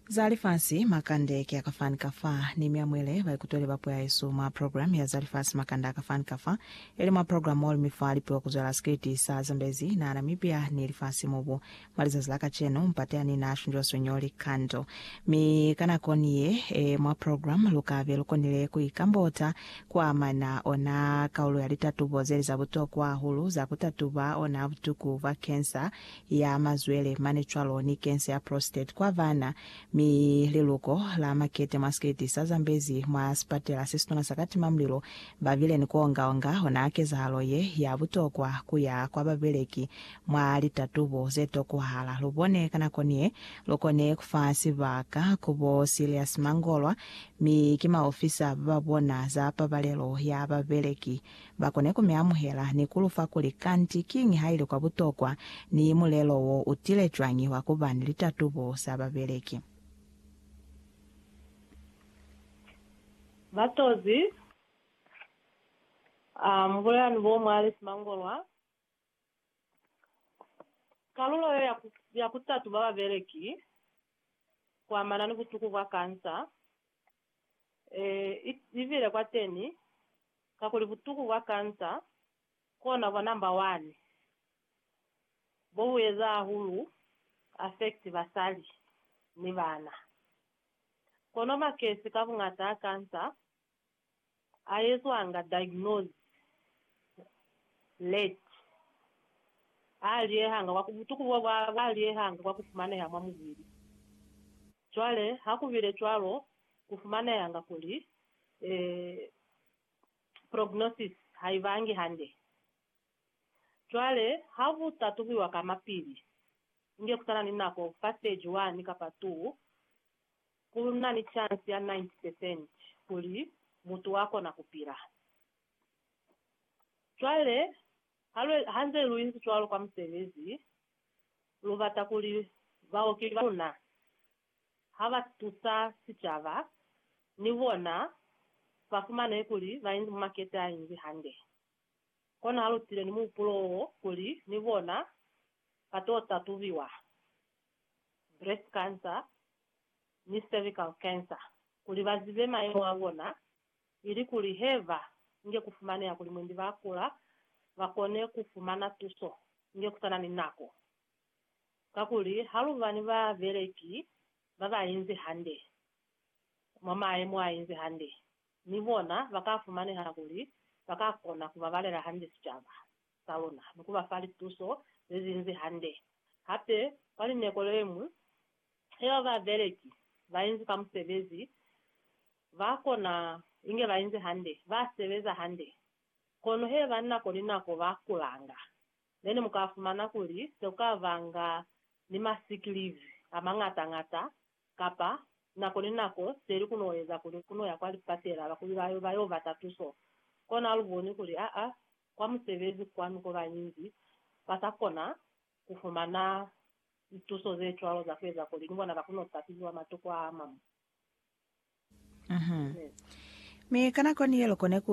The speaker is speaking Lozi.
Za Lifasi Makande ki a ka fani ka fa, ni mi amuele baikutweli ba Puo ya Yesu mwa programme ya Za Lifasi Makande a ka fani ka fa, ili mwa programme oli mi fa lipiwa ku zwela sikiliti sa zambezi na Namibia ni lifasi mubu. Mwa lizazi la kacenu, mpate ani na shunjwa sonyo likando. Mi ka nako ni ye e mwa programme, lu ka be lu konile ku ikambota kwa amana ona kaulo ya litatubo zeli za butokwa hahulu za ku tatuba ona butuku bwa cancer ya mazwele, mane cwalo ni kense ya prostate kwa bana, mi liluko la makete mwa sketi sa zambezi mwa sipatela se situna sa katimamlilo. Ba bile ni ku onga-onga ona kezahalo ye ya butokwa ku ya kwa babeleki mwa litatubo ze tokwahala. Lu bone ka nako ni ye lu kone ku fa sibaka ku bo Silius Mangolwa, mi ki maofisa ba ba bona za pabalelo ya babeleki ba kone ku mi amuhela ni ku lu fa kuli kanti kiñi ha ili kwa butokwa ni mulelo wo u tile cwañi wa ku ba ni litatubo za babeleki. Batozi, A mu bulela ni bo mwa li simangolwa kalulo yo ya ku tatuba babeleki ku amana ni butuku bwa kansa. E, i, i bile kwateni, kakuli butuku bwa kansa kona bwa number one bo bu eza hahulu ku affect basali ni bana. Kono makesi ka buñata a kansa a ezwanga diagnose late, a liehanga kwa ku butuku bo bwa ba liehanga kwa ku fumaneha mwa mubili. Cwale ha ku bile cwalo, ku fumanehanga kuli eh, prognosis ha i bangi hande. Cwale ha ku tatubuiwa kamapili, inge ku sa na ni nako fa stage one kapa two, Ku na ni chansi ya 90 percent kuli mutu wa kona ku pila. Cwale, ha lu, ha nze lu inzi cwalo kwa musebezi, lu bata kuli baoki ba luna ha ba tusa sicaba, ni bona ba fumane kuli ba inzi mumakete a inzi hande. Kono ha lu tile ni muhupulo wo kuli ni bona ba to tatubiwa, breast cancer ni cervical cancer, kuli ba zibe mayemo a bona ilikuli he ba nge ku fumaneha kuli mwendi ba kula, ba kone ku fumana tuso inge ku sa na ni nako. Kakuli ha lu ba ni babeleki ba ba inzi hande, mwa mayemo a inzi hande, ni bona ba ka fumaneha kuli ba ka kona ku babalela hande sicaba. za luna ni ku ba fa lituso ze zinzi hande. Hape kwa lineko le ñwi, he ba babeleki ba inzi fa musebezi, ba kona inge ba inzi hande, ba sebeza hande, kono he ba nako ni nako ba kulanga, nene mu ka fumana kuli se ku ka banga ni ma sick leave a mañata-ñata, kapa nako ni nako seli ku no eza kuli ku no ya kwa lipatela bakuli ba yo ba yo bata tuso. Kona lu boni kuli aa, kwa musebezi kwanu ko bañinzi ba sa kona ku fumana lituso ze cwalo za ku eza kuli ni bona ba kone ku kapiliwa matokwa a mañwi. Amen. Mi ka nakoni ye lukone ku